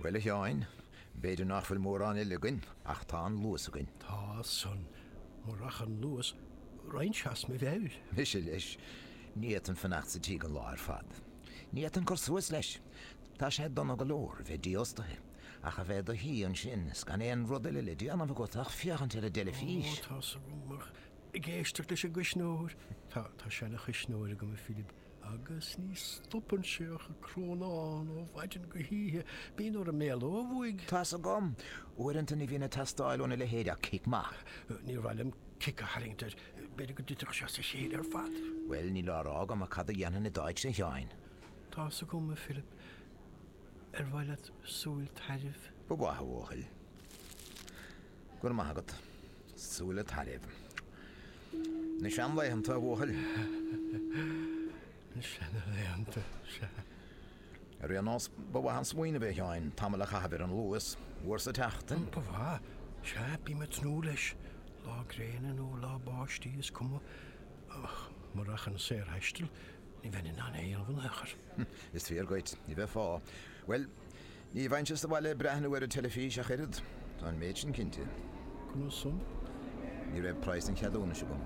Bhuel, a Sheáin, b'fhéidir nach bhfuil mórán eile againn, ach tá an luas againn. Tá san, murach an luas, raghainn as mo mheabhair. Mise leis, ní fhéadfainn fanacht sa tigh an lá ar fad. Ní fhéadfainn cur suas leis. Tá sé dona go leor a bheith dífhostaithe, ach a bheith i do shuí ansin is gan aon rud eile le déanamh agat ach féachaint ar an dteilifís. Ó, tá san, ach ag éisteacht leis an gcuisneoir. Tá seana-chuisneoir agam, a Philip. Agus ní stopann sé ach ag crónán ó mhaidin go hoíche. Bíonn fonn orm é a lámhach. Tá's agam. Uaireanta ní bhíonn ag teastáil óna leithéid ach cic maith. Níor mhaith liom cic a tharraingt air. B'fhéidir go dtitfeadh sé as a chéile ar fad. Bhuel, níl á rá agam ach cad a dhéanfainn i d'áit, a Sheáin? Tá's agam, a Philip. Ar mhaith leat súil tairbh? Ba mhaith, a bhuachaill. Go raibh maith agat. Súile Tairbh. Na seanlaethanta, a bhuachaill. Na seanlaethanta, sea. Ar aon nós, ba mhaith an smaoineamh é, a Sheáin, tamall a chaitheamh ar an Luas, uair sa tseachtain. Ba mhaith. Sea, bím ag tnúth leis. Lá gréine nó lá báistí, is cuma. Ach murach an saorthaisteal, ní bheinn in ann é a dhéanamh in aon chor. Is fíor dhuit. Ní bheifeá. Bhuel. Ní bheinnse sa bhaile ag breathnú ar an teilifís ach oiread, tá an méid sin cinnte. Conas san? Ní raibh praghas an cheadúnais agam.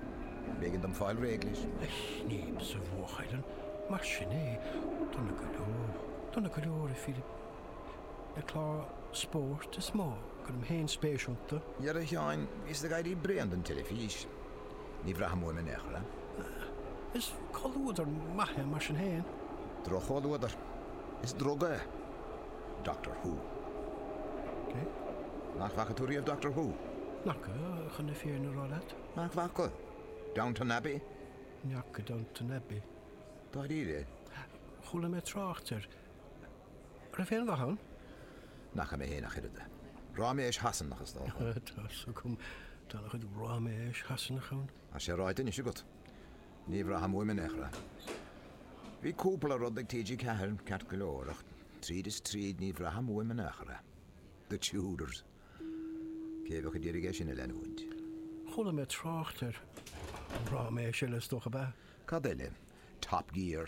B'éigean dom fáil réidh leis. Ah, ní maith, a bhuachaill, an mar sin é? Dona go leor, dona go leor, a Philip. Na cláir spóirt is mó go gcuirim féin spéis iontu. Dhera a Sheáin, bhíos ag éirí bréan den teilifís. Ní bhraithim uaim in aon chor é. Is comhluadar maith é mar sin féin. Droch-chomhluadar. Is druga é Doctor Who. Cé? Nach bhfaca tú riamh Doctor Who? N'fhaca, chun na fírinne a rá leat. Nach bhfaca? Downton Abbey? Ní fhaca Downton Abbey. Dáiríre? Chuala mé trácht air. An raibh aon mhaith ann? Ní fhaca mé féin ach oiread. Ráiméis Shasanach, is dócha. Tá's agam. Tá an-chuid ráiméis Shasanach ann. Tá sé ráite anois agat. Ní bhraithim uaim in aon chor. Bhí cúpla rud ag TG Ceathair ceart go leor, ach tríd is tríd ní bhraithim uaim in aon chor. The Tudors. Cé a bheadh ag iarraidh é sin a leanúint? Chuala mé trácht air. Ráiméis eile, is dócha. Ba. Cad eile? Top Gear?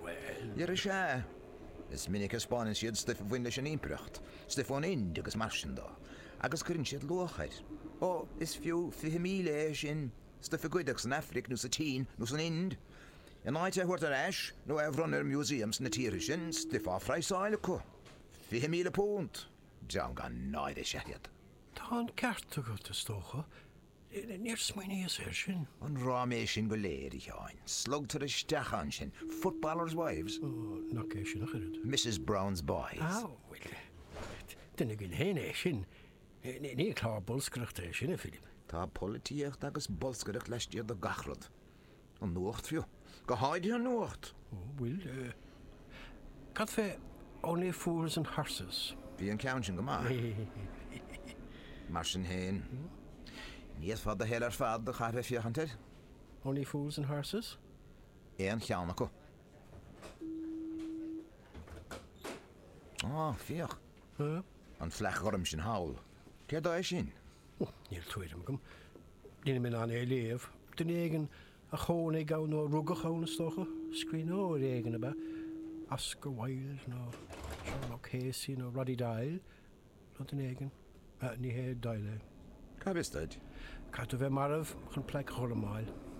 Bhuel. Is ea. Is minic a 'speáineann siad stuif a bhain leis an Impireacht, stuif ón Ind agus mar sin de, agus cuireann siad luach air. Ó, is fiú fiche míle é sin, stuif a goideadh san Aifric nó sa tSín nó san Ind, in áit é a thabhairt ar ais nó é a bhronnadh ar museum sna tíortha sin, stuif á phraghsáil acu! Fiche míle punt! Dream gan náire is ea iad. Tá an ceart agat, is dócha. Níor smaoiníos air sin. An ráiméis sin go léir, a Sheáin. Slogtar isteach ansin, 'Footballers' wives? Ó, nach é sin ach oiread. Misses Brown's boys. Á, bhuel. Duine againn fhéin é sin. Ní clár bolscaireachta é sin, a Philib. Tá polaitíocht agus bolscaireacht laistiar de gach rud. An nuacht fiú. Go háirithe an nuacht. Bhuel. Cad fé Only Fools and Horses? Bhí an ceann sin go maith. Mar sin féin, ní fhéadfá do shaol ar fad a chaitheamh ag féachaint air. Only Fools and Horses? Aon cheann acu. Á, féach. An phlaic ghorm sin thall, cé dó é sin? Níl tuairim agam. Níl mé in ann é a léamh. Duine éigin a chónaigh ann nó a rugadh ann, is dócha. Scríbhneoir éigin ab ea Oscar Wilde nó Seán O'Casey nó Roddy Doyle nó duine éigin. Ní hé Doyle é. Cá bhfios duit? Caithfidh tú a bheith marbh chun plaic ghorm a fháil.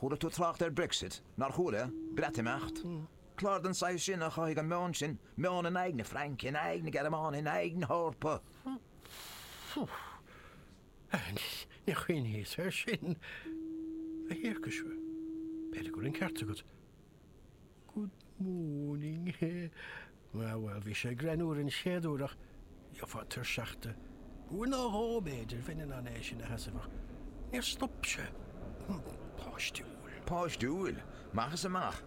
Chuala tú trácht ar Brexit, nár chuala? Breatimeacht. Clár den saghas sin a chothaigh an meon sin, meon in aghaidh na Fraince, in aghaidh na Gearmáine, in aghaidh na hEorpa. Níor chuimhníos air sin, a thiarcais. B'fhéidir go bhfuil an ceart agat. Good moaning, he. Bhuel, bhuel, bhí sé greannúr an chéad uair ach gheofá tuirseach de. Uair nó dhó, b'fhéidir, bheinn in ann é sin a sheasamh ach níor stop sé. Páistiúil. Páistiúil? Amach is amach.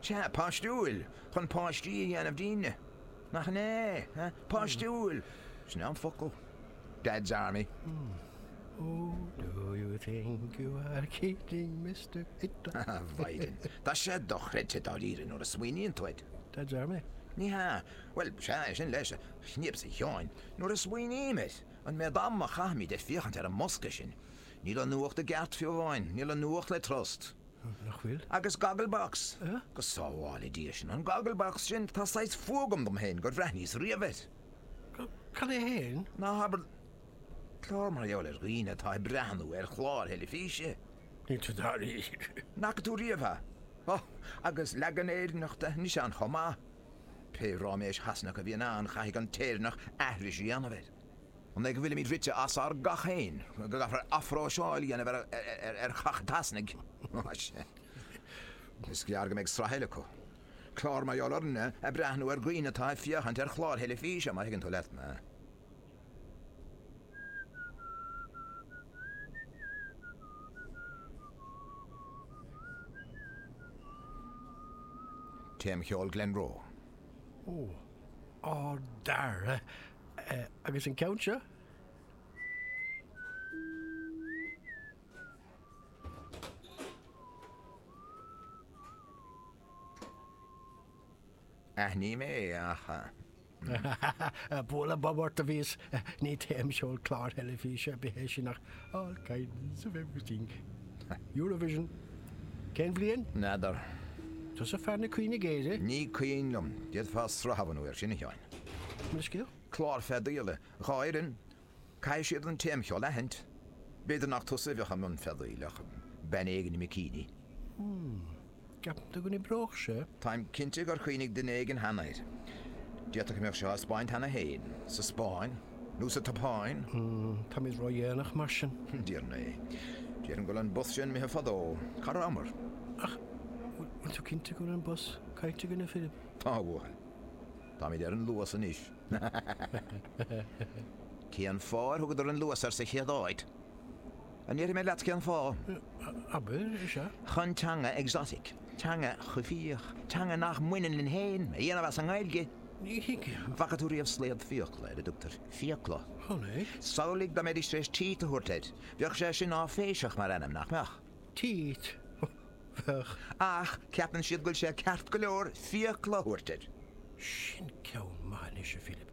Sea, páistiúil, chun páistí a dhéanamh dínne. Nach ea? Páistiúil. Sin é an focal. Dad's Army. Who do you think you are kidding, Mister Hitler? A Mhaighdean, tá sé dochreidte dáiríre nuair a smaoiníonn tú air. Dad's Army? Ní hea. Bhuel, sea, é sin leis, a Chríost, a Sheáin, nuair a smaoiním air, an méad ama a chaithimid ag féachaint ar an mbosca sin. Níl an nuacht i gceart fiú amháin, níl an nuacht le trust. Nach bhfuil? Agus Gogglebox! Go sábhála Dia sinn an Gogglebox sin, tá saghas fuath agam dom féin gur bhreathnaíos riamh air. Cad é fhéin? Ná habair, clár mar gheall ar dhaoine atá ag breathnú ar chláir theilifíse? Níl tú dáiríre? N'fhaca tú riamh é? Ó, agus leagan Éireannach de anois ann chomh maith! Pé ráiméis Shasanach a bhíonn ann chaithfidh an tÉireannach aithris a dhéanamh air. An é go bhfuilimid rite as ár gcac féin, go gcaithfear athphróiseáil a dhéanamh ar chac an tSasanaigh? Ó, sea. Is gearr go mbeidh sraith eile acu. Clár mar gheall orainne ag breathnú ar dhaoine atá ag féachaint ar chláir theilifíse, má thuigeann tú leat mé. Téamcheol Glenroe. Ó, a dheartháir, Agus an ceann seo? Aithním é, ach. Bualadh bob ort a bhíos, ní téamcheol clár teilifíse ar bith é sin ach all kinds of everything. Eurovision. Cén bhliain? N'fheadar. Tusa fear na cuimhne géire? Ní cuimhin liom. D'fhéadfá sraith a bhunú air sin, a Sheáin. Clár feadaíola dhá fhoireann, caithfidh siad an téamcheol a aithint. B'fhéidir nach tusa a bheadh i mbun feadaíl ach bean éigin i mbicíní. Hmm. An gceapann tú go n-oibreodh sé? Táim cinnte gur chuimhnigh duine éigin cheana air. D'fhéadfadh go mbeadh sé á thaispeáint cheana féin, sa Spáinn nó sa tSeapáin. Hmm. Táimid ró-dhéanach mar sin. Déarfainn é. Déarfainn go bhfuil an bus sin imithe fadó. Cá rabhamar? Ach, bhfuil tú cinnte go bhfuil an bus caillte againne, a Philib? Tá a bhfuil. Táimid ar an Luas anois. Cén fáth ar thugadar an Luas air sa chéad áit? An ndéarfaidh mé leat cén fáth? Abair, is ea. Chun teanga exotic, teanga choimhthíoch, teanga nach mbaineann linn féin, a dhéanamh as an nGaeilge. Ní thuigim. Bhfaca tú riamh slaod fiacla, ar a dtugtar fiacla? Chonaic. Samhlaigh dá mbeidís tar éis teeth a thabhairt air. Bheadh sé sin áiféiseach mar ainm, nach mbeadh? Teeth, bheadh. Ach ceapann siad go bhfuil sé ceart go leor fiacla a thabhairt air. Sin ceann maith anois, a Philib.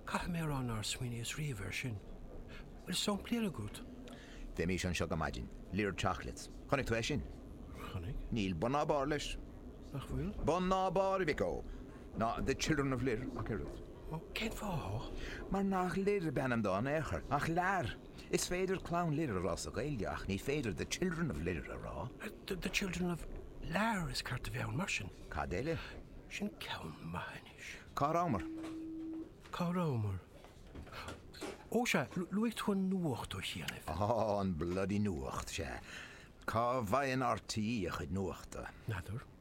Caithfidh mé a rá nár smaoiníos riamh air sin. Bhfuil samplaí eile agat? Bheimís anseo go maidin. Lir chocolates. Chonaic tú é sin? Chonaic. Níl bun ná barr leis. Nach bhfuil? Bun ná barr, a mhic ó. Ná The Children of Lir ach oiread. Ó, cén fáth? Mar nach Lir ab ainm dó in aon chor, ach Lear. Is féidir Clann Lir a rá sa Ghaeilge ach ní féidir The Children of Lir a rá. The Children of Lear is ceart a bheith ann mar sin. Cad eile? Sin ceann maith anois. Cá rabhamar? Cá rabhamar? Ó sea, luaigh tú an nuacht ó chianaibh. Á, an bloody nuacht, sea. Cá bhfaigheann RTÉ a chuid nuachta? N'fheadar.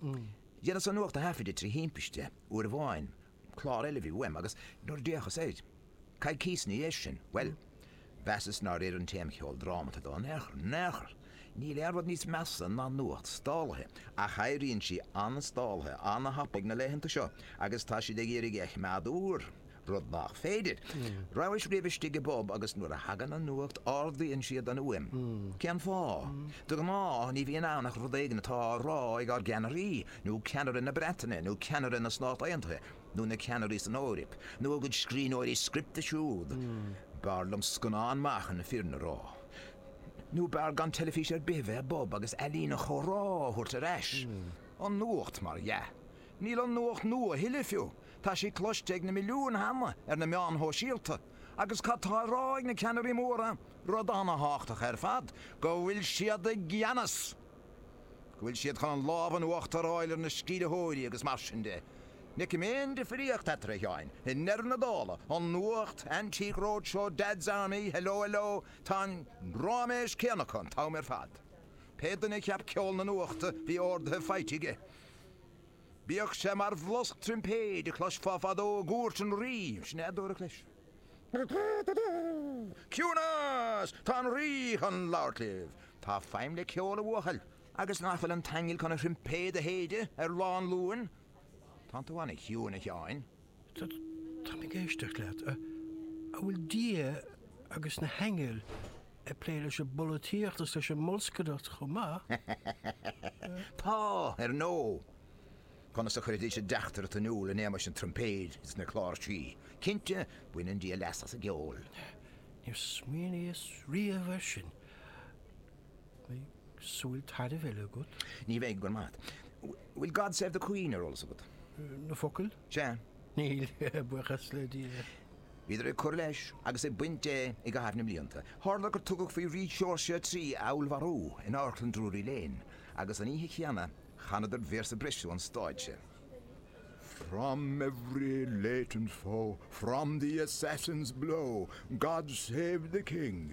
Dheineas an nuacht a thaifeadadh trí thimpiste uair amháin, clár eile a bhí uaim, agus nuair a d'fhéachas air, coicís ina dhiaidh sin, bhuel, mheasas nár oir an téamcheol drámata dó in aon chor, in aon chor! Níl aon rud níos measa ná nuacht stálaithe, ach éiríonn sí an-stálaithe an-thapaidh na laethanta seo, agus tá siad ag iarraidh a choimeád úr! rud nach féidir. Rabhais riamh istigh i bpub agus nuair a thagann an nuacht ardaíonn siad an fhuaim. Cén fáth? De ghnáth ní bhíonn ann ach rud éigin atá á rá ag ár gceannairí, nó ceannaire na Breataine, nó ceannaire na Stát Aontaithe, nó na ceannairí san Eoraip, nó a gcuid scríbhneoirí scripte siúd. B'fhearr liom scannán maith chun na fírinne a rá. Nó b'fhearr gan teilifís ar bith a bheith i bpub agus ealaín an chomhrá a thabhairt ar ais. An nuacht, mar dhea. Níl an nuacht nua a thuilleadh fiú. Tá sí cloiste ag na milliúin cheana ar na meáin shóisialta, agus cad tá á rá ag na ceannairí móra? Rud an-thábhachtach ar fad, go bhfuil siad i gceannas! Go bhfuil siad chun an lámh in uachtar a fháil ar na sceimhlitheoirí agus mar sin de. Ní fheicim aon difríocht eatarthu, a Sheáin, i ndeireadh na dála, an nuacht, Antique Roadshow, Dad's Army, Hello Hello, tá an ráiméis céanna acu an t-am ar fad. Pé duine a cheap ceol na nuachta, bhí orduithe faighte aige. Bíodh sé mar bhlosc troimpéid a chloisfeá fadó i gcúirt an rí, sin é a dúradh leis. Ciúnas! Tá an rí chun labhairt libh! Tá feidhm le ceol a bhuachaill, agus nach bhfuil an t-aingeal chun a throimpéad a shéideadh ar lá an Luain? Tánn tú an-chiúin, a Sheáin. Táim ag éisteacht leat. An bhfuil Dia agus na haingil ag plé leis an bpolaitíocht is leis an mbolscaireacht chomh maith? Tá, ar ndóigh! Conas a chuirfidís a dteachtaireacht in iúl in éamais an troimpéid is na cláirsí? Cinnte, baineann Dia leas as an gceol. Níor smaoiníos riamh air sin. Beidh súil tairbh eile agat. Ní bheidh, go raibh maith a't. Bhfuil God Save the Queen ar eolas agat? Na focail? Sea. Níl, a bhuíochas le Dia. Bhíodar ag cur leis agus ag baint de i gcaitheamh na mblianta. Tharla gur tugadh faoi Rí Seoirse a Trí a fheallmharú in Amharclann Drury Lane, agus an oíche chéanna, chanadar véarsa breise ón stáitse. From every latent foe, from the assassin's blow, God save the King!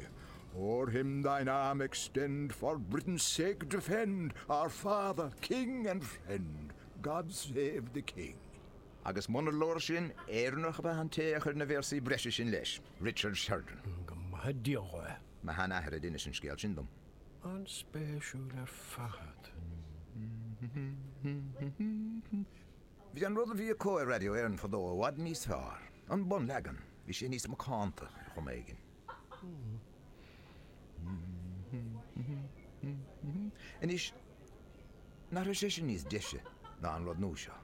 O'er him thine arm extend, for Britain's sake defend, Our father, king and friend, God save the King! Agus munar leor sin, Éireannach ab ea an té a chuir na véarsaí breise sin leis, Richard Sheridan. Go maithe Dia dhó é! Mo shean-athair a d'inis an scéal sin dom. An-spéisiúil ar fad. Bhí an rud a bhí acu ar Radio Éireann fadó i bhfad níos fearr. An bunleagan. Bhí sé níos macánta ar chuma éigin. Anois, nach raibh sé sin níos deise ná an rud nua seo?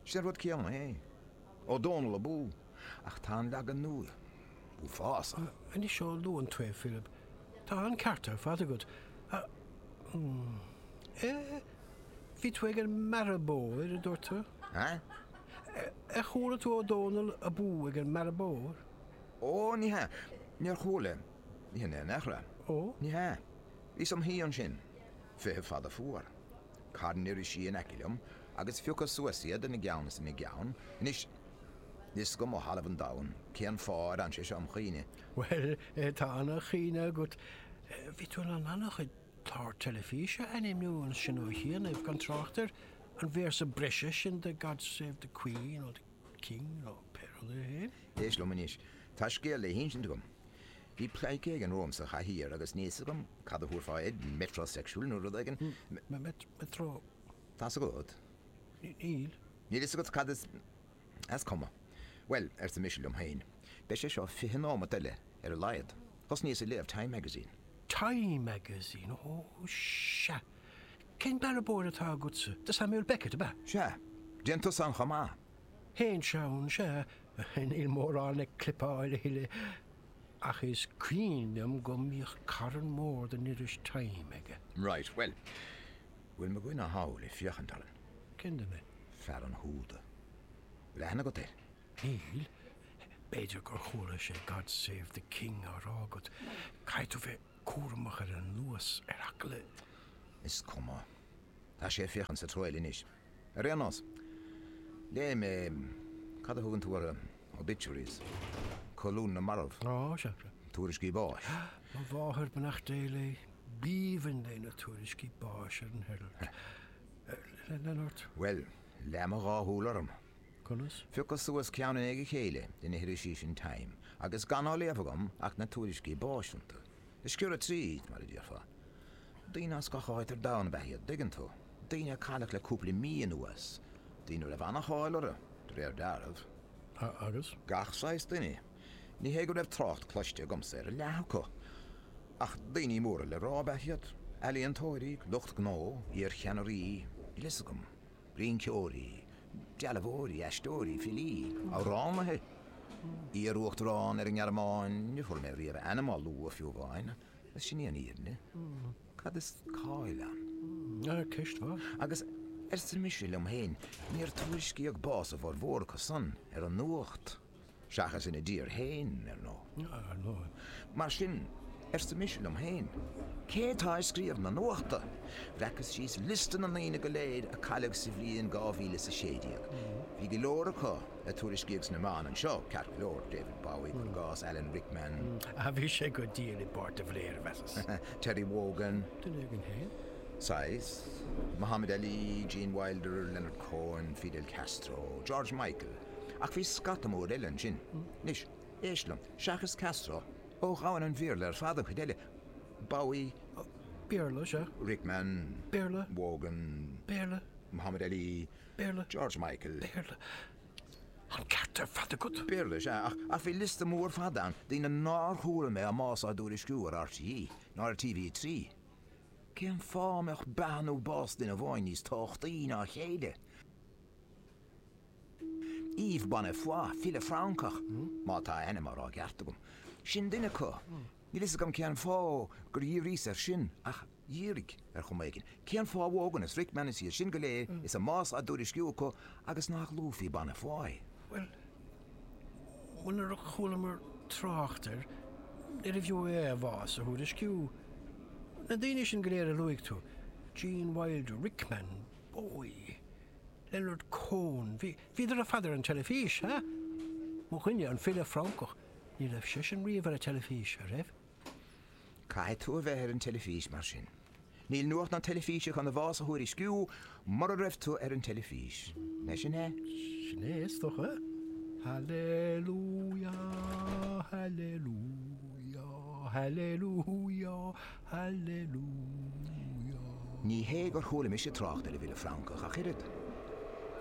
Sé an rud céanna é. O'Donnell abú! Ach tá an leagan nua uafásach. Anois ó luann tú é, Philib. Tá an ceart ar fad agat. A, eh, bhí tú ag an mbearbóir, a dúirt tú. Huh? Ar chuala tú O'Donnell abú ag an mBearradh Bodhar? Ó, ní hea. Níor chuala mé in aon chor. Ó? Ní hea. Bhíos im shuí ansin, feitheamh fada fuar. Carn irisí in aice liom agus phiocas suas iad ina gceann is ina gceann. Anois. Níl fhios agam ó thalamh an domhain cén fáth ar fhan sé seo im' chuimhne. Bhuel, tá an-chuimhne agat. Bhí tú in ann an-chuid clár teilifíse a ainmniú ansin ó chianaibh, gan trácht ar an véarsa breise sin de God Save the Queen nó the King nó pé rud é féin. Éist liom anois, tá scéal le hinsint agam. Bhí pleidhce éigin romham sa chathaoir agus níl fhios agam cad a thabharfá air, metrosexual nó rud éigin. Metró. Tá's agat. Níl. Níl fhios agat cad is, á, is cuma. Bhuel, arsa mise liom féin, beidh sé seo fiche nóimeat eile ar a laghad. Thosnaíos ag léamh Time Magazine. Time Magazine? Ó, sea. Cén bearbóir atá agatsa? The Samuel Beckett, ab ea? Sea. Téann tusa ann chomh maith? Théinn ann, sea. Níl mórán le clipeáil a thuilleadh, ach is cuimhin liom go mbíodh carn mór den iris Time aige. Right. Bhuel. Bhfuil mo dhuine thall ag féachaint orainn? Cén duine? Fear an húda. Bhfuil aithne agat air? Níl. B'fhéidir gur chuala sé God Save the King á rá agat. Caithfidh tú bheith cúramach ar an luas, ar eagla. Is cuma. Tá sé ag féachaint sa treo eile anois, ar aon nós. Léigh mé. Cad a thugann tú orthu? Obituaries, colún na marbh, tuairiscí báis. Mo mháthair, beannacht Dé léi, b'aoibhinn léi na tuairiscí báis ar an Herald. Lean ort. Bhuel, leath mo dhá shúil orm. Conas? Phiocas suas ceann i ndiaidh a chéile de na hirisí sin Time agus gan á léamh agam ach na tuairiscí báis iontu. Ag sciorradh tríd, mar a déarfá. Daoine as gach áit ar domhan ab ea iad, dtuigeann tú. Daoine a cailleadh le cúpla mí anuas, daoine a raibh an-cháil orthu, de réir dealraimh. A, agus? Gach saghas duine. Ní hé go raibh trácht cloiste agamsa ar a leath acu. Ach daoine móra le rá ab ea iad. Ealaíontóirí, lucht gnó, iarcheannairí, níl a fhios agam. Rinceoirí, dealbhóirí, aisteoirí, filí, amhránaithe, iar-Uachtarán ar an nGearmáin, níor chuala mé riamh a ainm á lua fiú amháin, agus sin í an fhírinne. Cad is cáil ann? Ceist mhaith. Agus, arsa mise liom féin, níor tuairiscíodh bás a bhformhór acu san ar an nuacht. Seachas ina dtír fhéin, ar ndóigh. Mar sin, arsa mise liom fhéin, cé atá ag scríobh na nuachta? Bhreacas síos liosta na ndaoine go léir a cailleadh sa bhliain dhá mhíle is a sé déag. Bhí go leor acu a tuairiscíodh sna meáin anseo, ceart go leor, David Bowie, cur i gcás, Alan Rickman, Ach bhí sé go diail i bpáirt de Valera, mheasas. Terry Wogan, duine againn fhéin? Saghas. Muhammad Ali, Gene Wilder, Leonard Cohen, Fidel Castro, George Michael. Ach bhí scata mór eile ansin. Anois, éist liom, seachas Castro, ó dhomhan an Bhéarla ar fad an chuid eile, Bowie, Béarla, sea. Rickman, Béarla, Wogan, Béarla, Muhammad Ali, Béarla, George Michael, Béarla, an ceart ar fad agat. Béarla, sea, ach bhí liosta mór fada ann, daoine nár chuala mé a mbás á dtuairisciú ar RTÉ ná ar TV3. Cén fáth a mbeadh beatha nó bás duine amháin níos tábhachtaí ná a chéile? Yves Bonnefoy, file Francach, má tá a ainm á rá i gceart agam. Sin duine acu. Níl a fhios agam cén fáth gur dhíríos air sin, ach dhírigh, ar chuma éigin. Cén fáth Wogan is Rickman is iad sin go léir is a mbás á dtuairisciú acu agus nach luafaí Bonnefoy? Bhuel, nuair nár chualamar trácht air, níorbh fhiú é a bhás a thuairisciú. Na daoine sin go léir a luaigh tú, Gene Wilder, Rickman, Bowie. Leonard Cohen, bhí, bhíodar ar fad ar an teilifís, eh? Mo dhuine, an file Francach, ní raibh seisean riamh ar an teilifís, a' raibh? Caithfidh tú a bheith ar an teilifís mar sin. Níl nuacht na teilifíse chun a bhás a thuairisciú mura raibh tú ar an teilifís. An é sin é? Sin é, is dócha. Hallelujah, hallelujah, hallelujah. Hallelujah. Ní hé gur chuala mise trácht ar an bhfile Francach ach oiread.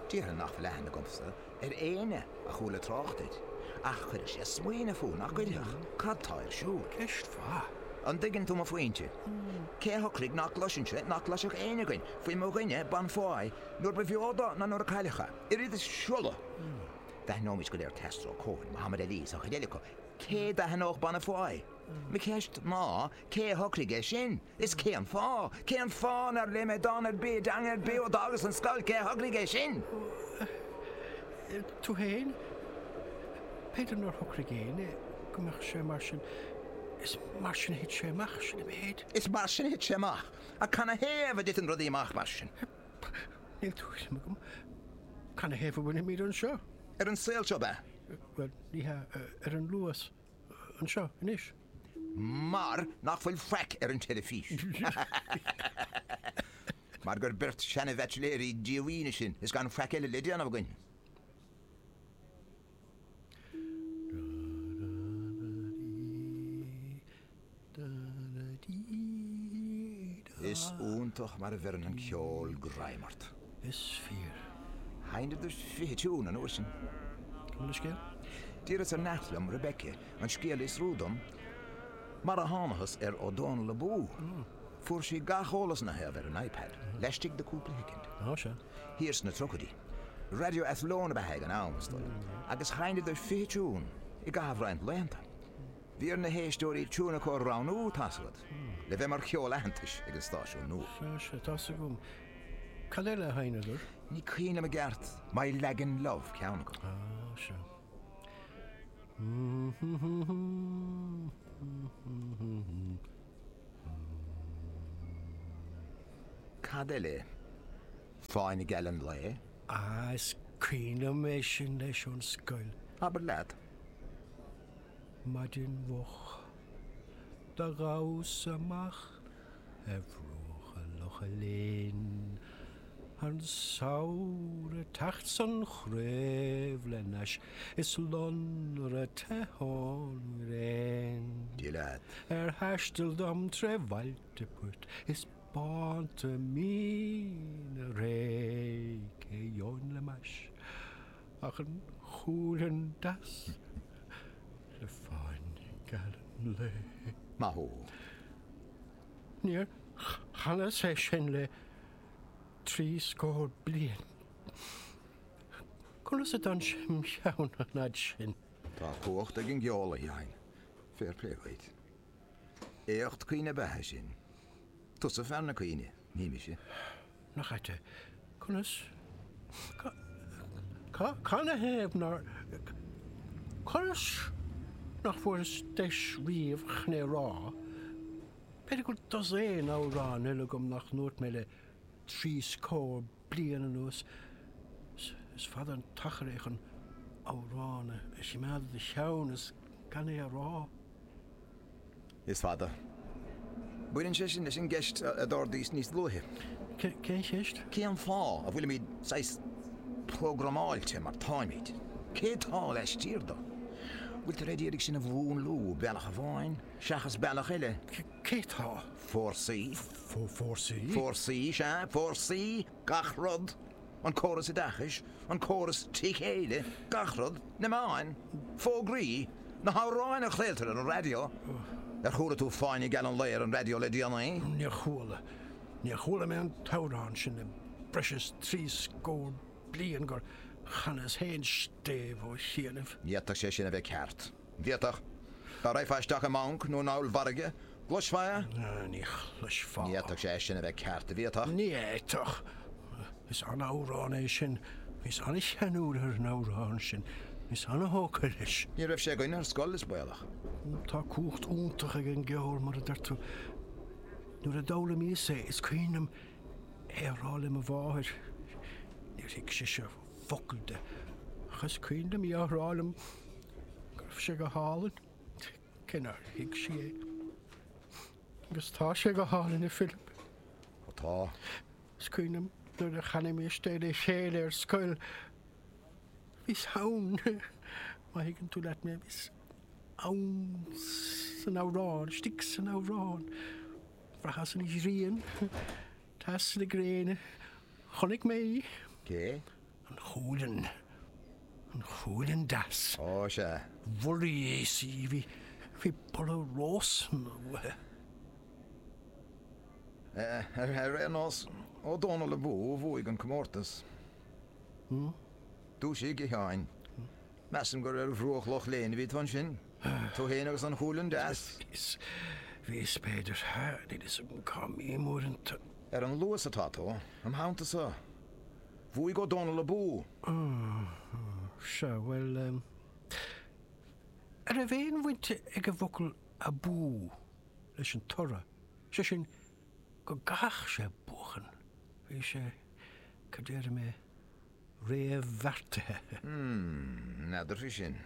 Déarfainn nach bhfuil aithne agamsa ar éinne a chuala trácht air, ach chuirfeadh sé ag smaoineamh thú, nach gcuirfeadh? Cad tá ar siúl? Ceist mhaith. An dtuigeann tú mo phointe? Cé a shocraigh nach gcloisfinnse, nach gcloisfeadh éinne againn, faoi mo dhuine, Bonnefoy, nuair ba bheo dó ná nuair a cailleadh é, oiread is siolla? D'aithneoimis go léir Castro, Cohen, Muhammad Ali is an chuid eile acu, cé d'aithneodh Bonnefoy? Mo cheist ná, cé a shocraigh é sin? Is cén fáth? Cén fáth nár léigh mé dán ar bith i dteanga ar bith ó d'fhágas an scoil? Cé a shocraigh é sin? Tú fhéin? B'fhéidir nár shocraigh éinne go mbeadh sé mar sin. Is mar sin a thit sé amach, sin an méid. Is mar sin a thit sé amach. Ach canathaobh a dtiteann rudaí amach mar sin? Níl tuairim agam. Canathaobh a bhfuilimid anseo? Ar an saol seo, ab ea? Bhuel, ní hea, ar an Luas. anseo anois. Mar nach bhfuil faic ar an teilifís. Mar gur beirt seana-bhaitsiléirí díomhaoine sinn is gan faic eile le déanamh againn. Is iontach mar a bheireann an ceol greim ort. Is fíor. Sheinneadar 20 tiún an uair sin. Cad é an scéal? D'iarras ar neacht liom, Rebecca, an scéal a fhiosrú dom, mar a thánathas ar Ó Dónaill Abú! Fuair sí gach eolas ina thaobh ar an iPad, laistigh de cúpla shoicind. Ó, sea. Thiar sna tríochaidí. Radio Athlone ab ea é ag an am, is dóigh, agus sheinneadar 20 tiún i gcaitheamh roinnt laethanta. Bhí ar na héisteoirí tiún acu a roghnú, tá's agat, le bheith mar cheol aitheantais ag an stáisiún nua. Sea, sea, tá's agam. Cad eile a sheinneadar? Ní cuimhin liom i gceart. My Lagan Love ceann acu. Á, sea. Cad eile? Fáinne Geal an Lae? Á, is cuimhin liom é sin leis ón scoil. Abair leat. Maidin mhoch, do ghabhas amach ar bhruacha Locha Léin, an samhradh ag teacht 's an chraobh le n-ais is lonradh te ón ngréin. Dia leat! Ar thaisteal dom tré bhailte puirt is bánta míne réidh, cé gheobhainn le m'ais? Ach an chúilfhionn deas le fáinne geal an lae. Maith thú! Níor chanas é sin le trí scór bliain. Conas a d'fhan sé im' cheann an fhad sin? Tá cumhacht ag an gceol, a Sheáin. Fair play dhuit. Éacht cuimhne ab ea é sin. Tusa fear na cuimhne, ní mise. Nach ait é? Conas? Canathaobh nár. Conas nach bhfuaireas deis riamh chun é a rá? B'fhéidir go bhfuil dosaen amhrán eile agam nach ndúirt mé le trí scór bliain anuas. Is fada an t-achar é chun amhrán a chimeád i do cheann is gan é a rá. Is fada. Baineann sé sin leis an gceist a d'ardaíos níos luaithe. Cén cheist? Cén fáth a bhfuilimid saghas programáilte mar táimid? Cé tá laistiar de? Bhfuiltear ag iarraidh sinn a mhúnlú bealach amháin seachas bealach eile? Cé tá? Fórsaí? Fórsaí? Fórsaí, sea, fórsaí, gach rud. an córas oideachais, an córas trí chéile, gach rud, na meáin, fógraí, na hamhráin a chraoltar ar an raidió. Ar chuala tú Fáinne Geal an Lae ar an raidió le déanaí? Níor chuala. Níor chuala mé an t-amhrán sin le breis is trí scór bliain gur chanas féin stéibh ó chianaibh. D'fhéadfadh sé sin a bheith ceart. bhféadfadh. Dá raghfá isteach i mbanc nó in ollmhargadh, chloisfeá é. Ní chloisfeá. Ní fhéadfadh sé é sin a bheith ceart, a bhféadfadh? Ní fhéadfadh. Is an-amhrán é sin. Bhíos an-cheanúil ar an amhrán sin. Bhíos an-thógtha leis. Ní raibh sé againn ar scoil, is baolach. Tá cumhacht iontach ag an gceol, mar a deir tú. Nuair a d'fhoghlaimíos é, is cuimhin liom é a rá le mo mháthair. Níor thuig sise. focal de. Ach is cuimhin liom í á rá liom go raibh sé go hálainn, cé nár thuig sí é. Agus tá sé go hálainn, a Philip. Ó tá. Is cuimhin liom nuair a chanaimis é le chéile ar scoil. Bhíos ann, má thuigeann tú leat mé, bhíos ann san amhrán, istigh san amhrán. Bhraitheas an ghrian, teas na gréine, Chonaic mé í. Cé? An chúileann. An chúileann deas. Ó, sea. Bholaíos í. Bhí, bhí boladh rósanna uaithi. Ar aon nós, Ó Dónaill Abú a bhuaigh an comórtas. Dúisigh, a Sheáin. Measaim gur ar bhruach Loch Léin a bhí tú ansin, tú fhéin agus an chúileann deas? Bhíos, bhíos, b'fhéidir. Níl 'fhios a'm cá mbím uaireanta. Ar an luas atá tú, im theanntasa. Bhuaigh Ó Dónaill Abú! Ó, sea, bhuel, eh, a' raibh aon bhaint ag an bhfocal abú leis an toradh, sé sin, go gcaithfeadh sé buachan. Bhí sé, cad déarfaidh mé, réamhbheartaithe. Mmm, n'fheadar faoi sin.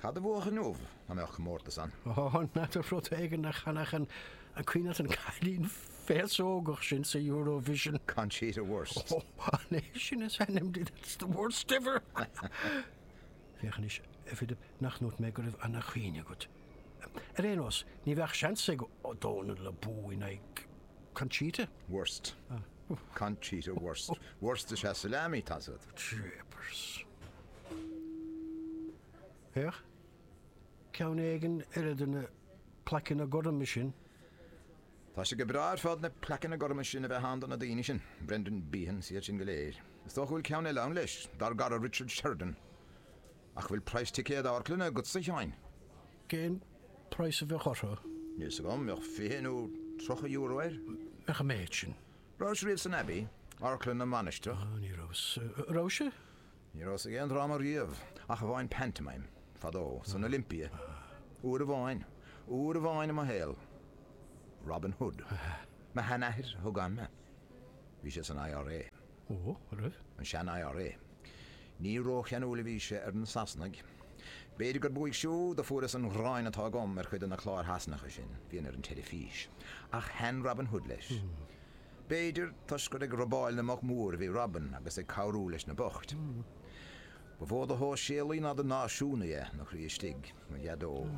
Cad a bhuafadh inniu dá mbeadh comórtas ann? Ó, n'fheadar, rud éigin a chanfadh an, an cuimhin leat, an cailín féasógach sin sa Eurovision. Conchita Wurst. Ó, an é sin is ainm di, that's the worst ever! Féach anois, a Philip, nach ndúirt mé go raibh an-chuimhne agat. Ar aon nós, ní bheadh seans ag Ó Dónaill Abú in aghaidh Conchita. Wurst. Conchita Wurst. Wurst is ea salami, tá 's agat. Jeepers. Féach, ceann éigin eile de na plaiceanna gorma sin. Tá sé go breá ar fad na plaiceanna gorma sin a bheith ann do na daoine sin. Brendan Behan is iad sin go léir. Is dócha go bhfuil ceann eile ann leis, dár gcara Richard Sheridan. Ach bhfuil praghas ticéad amharclainne agatsa, a Sheáin? Cén praghas a bheadh orthu? Níl 's agam, bheadh fiche nó tríocha euro air. Bheadh an méid sin. Rabhais riamh san Abbey, amharclann na Mainistreach? Ní rabhas, a rabhais-se? Ní rabhas ag aon dráma riamh, ach amháin pantomime, fadó, san Olympia. Uair amháin. Uair amháin i mo shaol. Robin Hood. Mo sheanathair a thug ann mé. Bhí sé san IRA. Ó, a raibh? An sean-IRA. Ní rócheanúil a bhí sé ar na Sasanaigh. B'fhéidir gurb uaidh siúd a fuaireas an ghráin atá agam ar chuid de na cláir Shasanacha sin a bhíonn ar an teilifís. Ach thaitin Robin Hood leis. B'fhéidir toisc gur ag robáil na mboc mór a bhí Robin agus ag cabhrú leis na boicht. Ba mhó de shóisialaí ná de náisiúnaí é, ina chroí istigh, mo Dheaideo.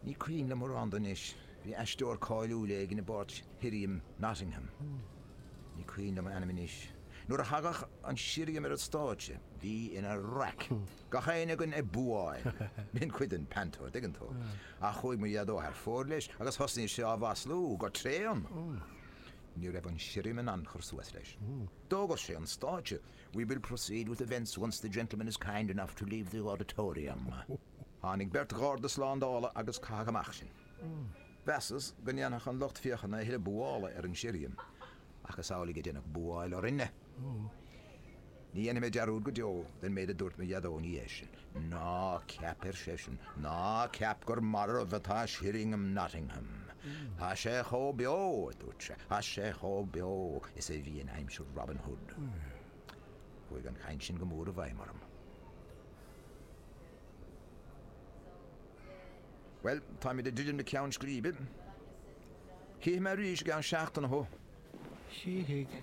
Ní cuimhin liom mórán de anois, bhí aisteoir cáiliúil éigin i bpáirt Shirriam Nottingham, ní cuimhin liom a ainm anois, nuair a thagadh an Sirriam ar an stáitse, bhíodh ina raic, gach éinne againn ag búáil, b'in cuid den panto, dtuigeann tú, ach chuaigh mo Dheaideo thar fóir leis agus thosnaigh sé á mhaslú go tréan. Ní raibh an Sirriam in ann cur suas leis. D'fhógair sé ón stáitse, 'We will proceed with events once the gentleman is kind enough to leave the auditorium. Tháinig beirt gharda slándála agus caitheadh amach sinn. Cheapas go ndéanfadh an lucht féachana a thuilleadh buála ar an sirriam, ach is amhlaidh a deineadh buáil orainne! Ní dhéanfaidh mé dearúd go deo den méid a dúirt mo Dheaideo ina dhiaidh sin, Ná ceap, ar seisean, ná ceap gur marbh atá sirriam Nottingham. Tá sé chomh beo, a dúirt sé, tá sé chomh beo is a bhí in aimsir Robin Hood. Chuaigh an chaint sin go mór i bhfeidhm orm. Bhuel, táimid ag druidim le ceann scríbe. Chífidh mé arís i gceann seachtaine thú. Chífidh.